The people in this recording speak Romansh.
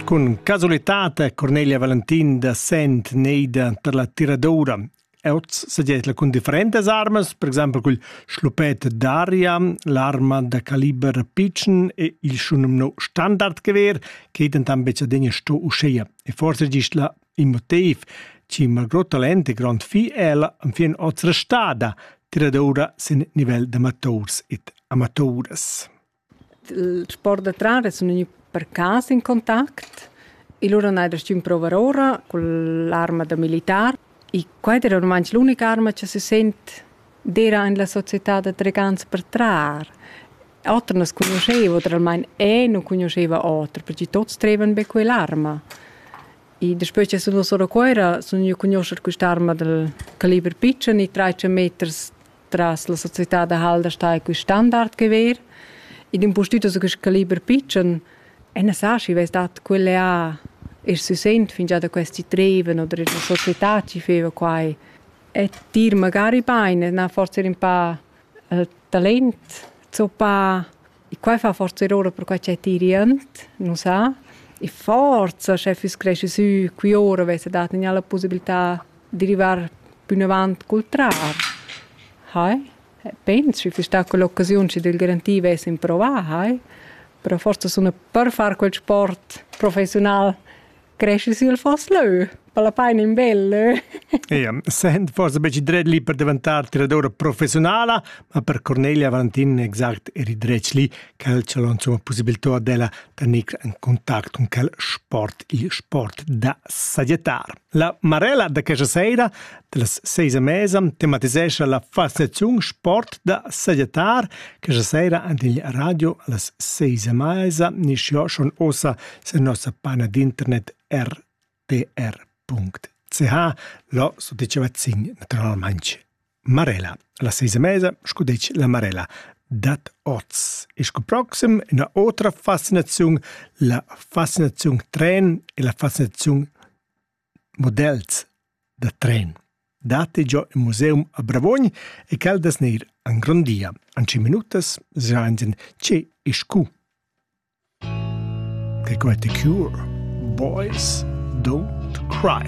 Cun casualitat è Cornelia Valentin da Sent neida tar la tiradora. Oz segietla cun differentas armas, per exempel cul schlupet d'aria, l'arma da caliber pitschen e il schunumno standardgewehr, che dentan becadegna sto uscheia. E forse gist la in motiv, ci Margot Talente, grand fi ella, am fin oz restada, tiradora sin nivel d'amators et amatoras. Il sport da trar es gnü per cas in contact e lura n'hai restà in prouva ora cun l'arma da militar. E quai d'eira ormai l'unic'arma cha sü sent d'eira in la società da tregants per trar. Oter nu's cugnuscheva oter almain e nu cugnuscheva oter perche tuots trevan be quell'arma. E daspö cha sun duos ora a Cuera sun gnü a cugnuoscher quist'arma dal caliber pitschen e trais meters Tras la società da Halderstein cui standard che ver, ed in postüt so quist caliber pitschen, e ne sa schi vess dat quelle a e si sent fingià da questi treven oder la società chi feva quai. E tir magari bain, na forse ün pa talent zoppà quai fa forza ora per quai ch'è tirient, nu sa. E forza, sche füss cresci sü qui ora vessa dat gnà la pussibiltà di rivar pünavant cul trar. Hai? Pens schi füss sta quell'occasiun schi d'el garantir vess improvà, hai? Però forsa suna per far quel sport professiunal cresci sül foss leu, per la paina in bel leu. Ja, sent forse beci dret lì per diventar tiradora professionala, ma per Cornelia Valentin exact eri dretg lì, quel ce l'ho insomma possibilità della tenir en contact con quel sport, il sport da saggettar. La Marella de questa sera Dallas seis a mesa tematisescha la fascinaziun sport da sajettar questa sera ant il radio allas seis a mesa nischiò schon ossa sen nossa pagina d'internet rtr.ch lo so diceva zin naturalmente Marella. Alla seis a mesa scudec la Marella dat oz. E sco proxim una otra fascinaziun, la fascinaziun tren e la fascinaziun Models da tren datti giò ün museum a Bravuogn e quel dess gnir angrondia in tschient minutas sainza che e scu. They got the cure. Boys don't cry.